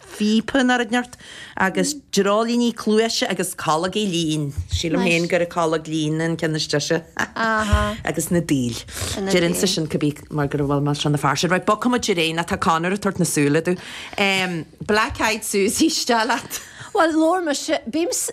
phíopa in ard nirt, agus dreoilíní cluaise agus colg lín, sílim féin gur colg lín an ceann is deise, agus na daoil. Deir Inse sin go bí mar go bhfuil mé seo na fear sin. Right, bogfaidh muid ar aghaidh, nó tá Conor ag tabhairt na súl domh. Black Eyed Susie, steall leat. Bhuel, labhair mise, bím sa.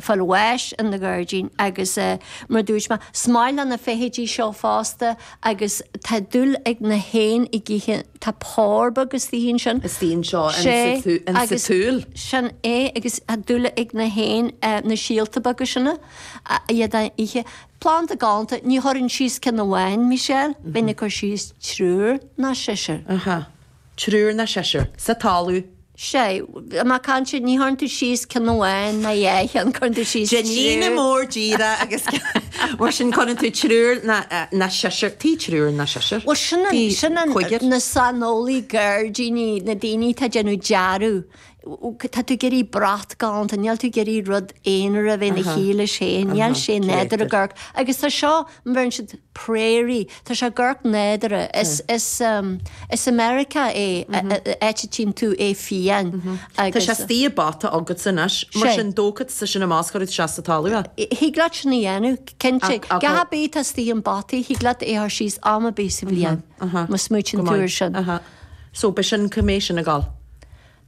fáil bháis ina gairdín agus mar a dúirt mé, is maith le na feithidí seo fosta agus tá dúil ag na héin á ithe, tá pór beag istigh ansin. Istigh anseo in sa tsúil. Sin é agus tá dúil ag na héin na síolta beaga sin, iad a ithe. Planda galánta, ní chuireann tú síos ceann amháin, Michelle, bíonn ag cur síos triúr ná seisear. triúr ná seisear, sa talamh. Sea, má caitheann tú, ní chuirfidh tú síos ceann amháin ná dhá cheann, cuireann tú síos triúr. Ceirnín mór díreach agus mar sin cuireann tú triúr ná seisear, tí triúr ná seisear, tí cúigear. Bhuel, sin an, na saineolaí gairdíní, na daoine atá ag déanamh dearadh, tá tú ag iarraidh brat galánta, níl tú ag iarraidh rud aonair a bheith ina shuí leis féin, níl sé nádúrtha ag amharc, agus tá seo, a bheireann siad prairie, tá sé ag amharc nádúrtha, is i Meiriceá é, áit a dtchíonn tú é fiáin agus. Tá sé istigh i bpota agatsa anois, mar sin dócha tá sin i mbosca agat, sé sa talamh é. Thig leat sin a dhéanamh, cinnte, a dhath ar bith atá istigh i bpota, thig leat é a chur síos am ar bith sa bhliain, má smaoitíonn tú ar sin. So b'shin go mbeidh sin ag dul.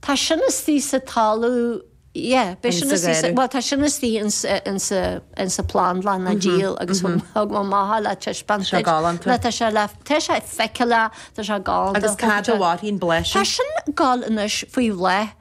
Tá sin istigh sa talamh yeah beidh sin istigh sa bhuel tá sin istigh in sa plandlann á dhíol agus thug mé amach é le taispeáint duit. Tá sé galánta. Ná tá sé le tá sé feiceálach tá sé galánta. Agus cá fhad a mhairfidh an bláth sin? Tá sin ag dul anois faoi bhláth.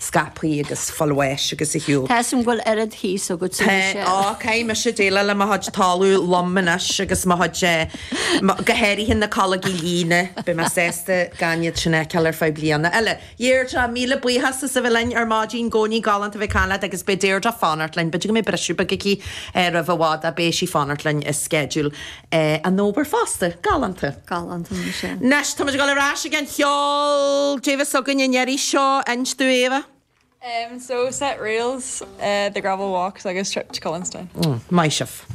scapfaí agus fáil bháis agus ar shiúl. Tá suim go bhfuil oiread thíos agatsa Tá, mise. Ó, caithfidh mise déileáil le mo chuid talamh lom anois agus mo chuid eh, mo, go háirithe na coilg lín, beidh mé sásta gan iad sin a fheiceáil ar feadh bliana eile. Dheirdre, míle buíochas as a bheith linn ar maidin, i gcónaí galánta a bheith ag caint leat agus beidh Deirdre ag fanacht linn, b'fhéidir go mbeidh briseadh beag aici eh roimh i bhfad ach beidh sí ag fanacht linn i sceideal. é a n-obair fosta. Galánta. Galánta mar sin. Anois, táimid ag dul ar ais ag an cheol, caidé a bheas againn an iarraidh seo, inis dúinn Éabha? Em so set reels eh the gravel walks agus trip to Cullenstown. Mm, maith sibh.